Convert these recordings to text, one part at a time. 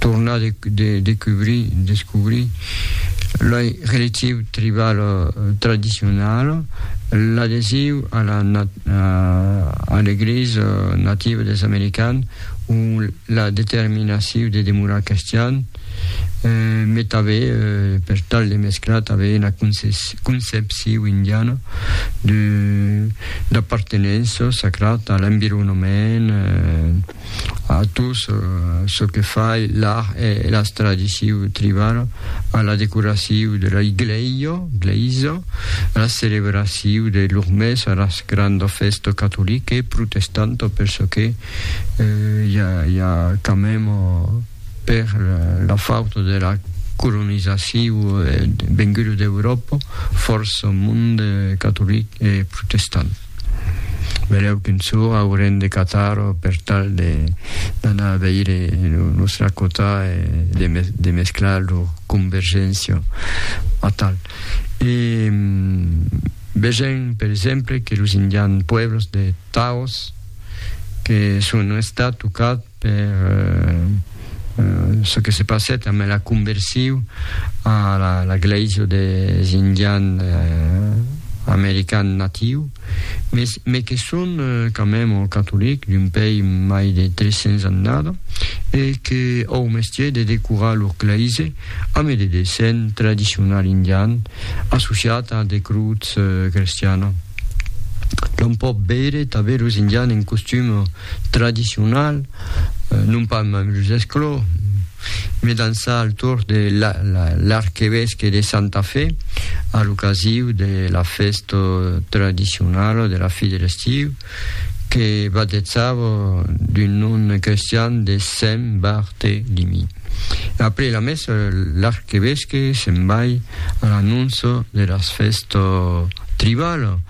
tornar de decubrir, descobrir loi relatiu tribal tradicional, l'adhesiu a la a l'Eglisa nativa des Americans o la determinaciu de demorar cristian, me tave per tal de mesclar tave una concepciu indiana de d'apartenença sacrat a l'environament, a tot çò que fai l'art e las tradicion triban a la decoracion de la igleio, gleisa, a la celebracion de lor mès, a las granda festa catolica e protestanta, per çò que i a, i a quand même per la fauta de la colonizacion venguda d'Europa, fòrça monde catolic e protestant. Berèu qu'un sour aurem de catar-o per tal de d'anar veire lo nostra cota e de, de mesclar lo convergentio atal. E vegem per exemple que los indians pueblos de Taos que son estat tocats per çò que se passèt amb la conversion a la glèisa des Indians Americans natius, mes que son quand mème catolics d'un país mai de 300 annada e que au mestier de decorar lor glèisa amb de dessin tradicional indian associat a de crutz crestiana. L'on pòt veire tanben los Indians en costum tradicional, non pas mèm los esclòu, me dançar al torn de l'arquevesque de Santa Fe a l'ocasiu de la fèsta tradicionala de la fi de l'estiu que batetzava d'un nom crestian de Sent Bartelimi. Après la messa, l'arquevesque se'n vai a l'anóncia de las fèstas tribalas,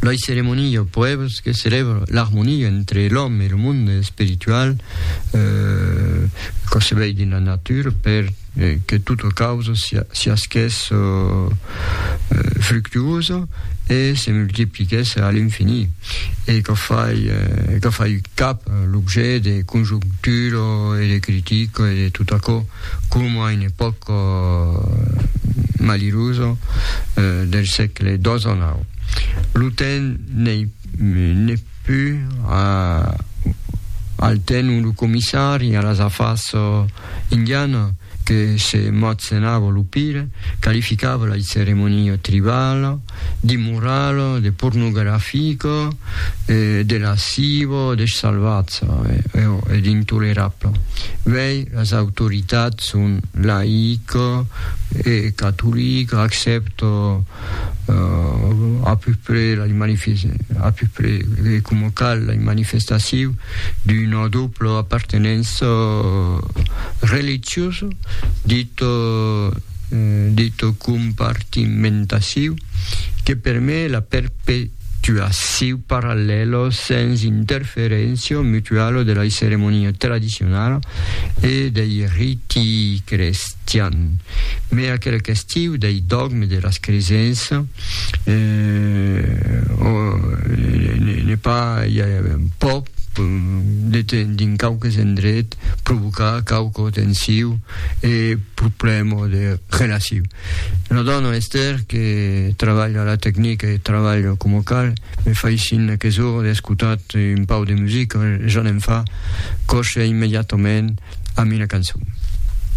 Loi ceremonia o poebs que celèbra l'armonia entre l'òme e lo monde espiritual eh, concebèi dins la natura per eh, que tota causa sia, siasquès oh, eh, fructuosa e se multipliquès a l'infini e que fai, eh, que fai cap l'objet de conjectura e de critica e de tot aquò. coma a una epòca malirosa del sègle xix. Lo temps n'ei pus al temps ont lo comissari a las afars indianas, que se motzenava lo pire, qualificava la ceremonia tribala, d'immoral, de pornografic, de lasciv, de salvatz e d'intolerab. Uèi las autoritats son laic e catolic, accèpto a peu près la a peu près coma cal la manifestacion d'una dobla apartenença religiosa dit de tot compartimentaciu que permet la perpetuaciu parallèlo sens interferéncia mutuala de la ceremonia tradicionala e dei riti crestian, mai aquela qüestiu dei dogmes de las cresença ne pas, i a pas, dins quauques endrets, provocar quauqu tensiu e problèma de relaciu. Una dòna, Esther, que trabalha a la tecnica e trabalha coma cal, me faissin aques ora d'escotat un pau de musica, ja ne'n fa, coche immediatament a mina cançon.